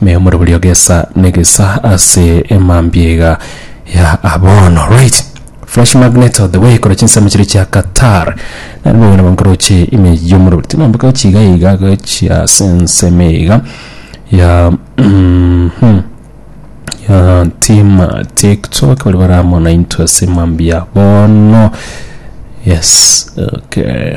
Me omorobori ogesa negesa ase emambia iga ya abono right Fresh magnet of the way kora chinsemo chiria chia Qatar nari bobe nabo nkoroche ime yomorobori tinombe gochi iga iga gochi ase ensemo iga ya mhm ya tima tiktok bari baramona into ase emambia bono yes okay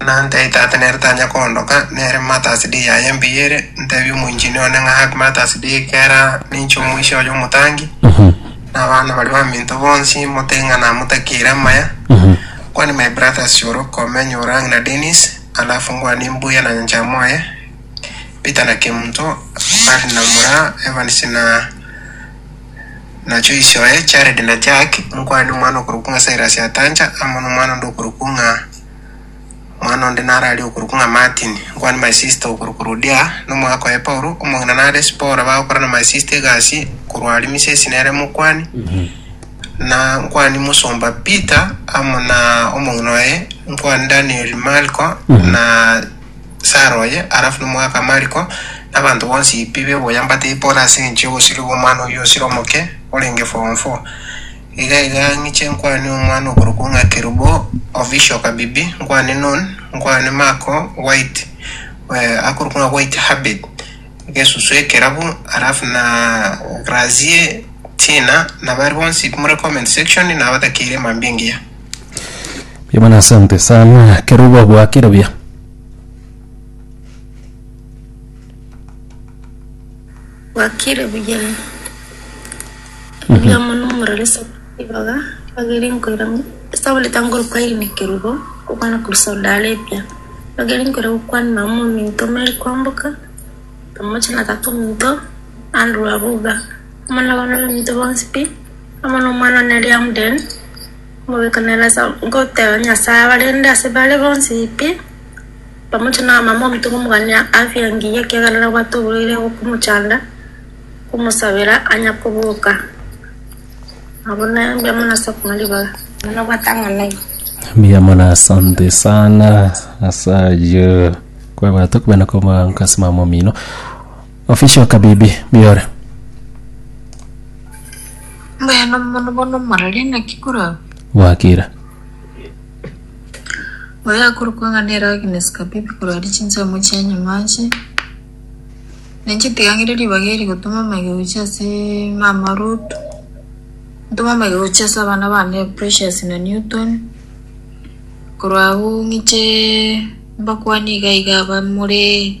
na nte itate nere tanya koondoka, nere matax D yaye mbuya ere, ntebie omoinchinia one ng'a Happy Matax Day, kera ninche omoisia oye omotangi, na abana baria baminto bonsi motebi ng'a namotakeire amaya. Kwani my brothers Shoro, Komeny, Orang na Dennis, alafu ngwane mbuya na nyancha moye, Peter na Kemunto, Barry na Mura, Evans na Nacho isioe, Jared na Jack, omokwana nomwana okorokwa ng'a Silas Atancha, amo nomwana onde okorokwa ng'a Omwana onde naro aria okorokwa ng'a Martin, nkwane my sister okorokwa Rodia, nomoaka oye Paulo, omong'ina nare Sipora, bagokora na my sister egasi korwa aria Misesi nere mokwani, na nkwane mosomba Peter, amo na omong'ina oye, nkwane Daniel, Marko, na Sara oye, alafu nomogaka Mariko, na abanto bonsi pi b'eboyia mbatebie pole ase engencho y'obosio bw'omwana oyio osire omoke, orenge form four. Iga iga ng'iche nkwane omwana okorokwa ng'a Kerubo, official Kabibi, nkwane Nun, nkwane Marko, White, eh, akorokwa ng'a White Herbert, Gesusu Ekerabu, alafu na Grazie, Tina, na baria bonsi pi more comment section, nabatakeire mambia engiya. Mbuya mono asante sana kero ogogoakera buya. Gwakire buya. Mbuya mono omorore ibaga bagere nkoira esabuni tangori kwairi na kerubo okwana kurusa odare epia bagere nkoira gokwana na omonto mere kwamboka omoche na tata omonto andurwa buga. Amanyaga nabaminto bonsi pi, amo nomwana one aria Amden, omobeka na Elasa, goteba Nyasae abarende ase bare bonsi pi, pamoja na abamama ominto komogania afya engiya, ekiagera nabwate oborwaire okomochanda, komosabera anya koboka. Nabo nembe amo nase okong'a ribaga, nabo nabwate ang'anaini. Mbuya mono asante sana ase ayio kwabwate okobena komoango ase mama omino Official Kabibi Biore. Mbuya na omonwa bono morarie naki korabe? Gwakire. Oyo akorokwa ng'a nere Agnes Kabibi korarie chinsemo chia nyuma ache. Nainche ntigang'ire ribaga eri gotoma amaiga gochia ase mama Ruth, ntome amaiga gochia ase abana bane Precious na Newton. Korwa agwo ng'iche mbakwanie iga iga abamore.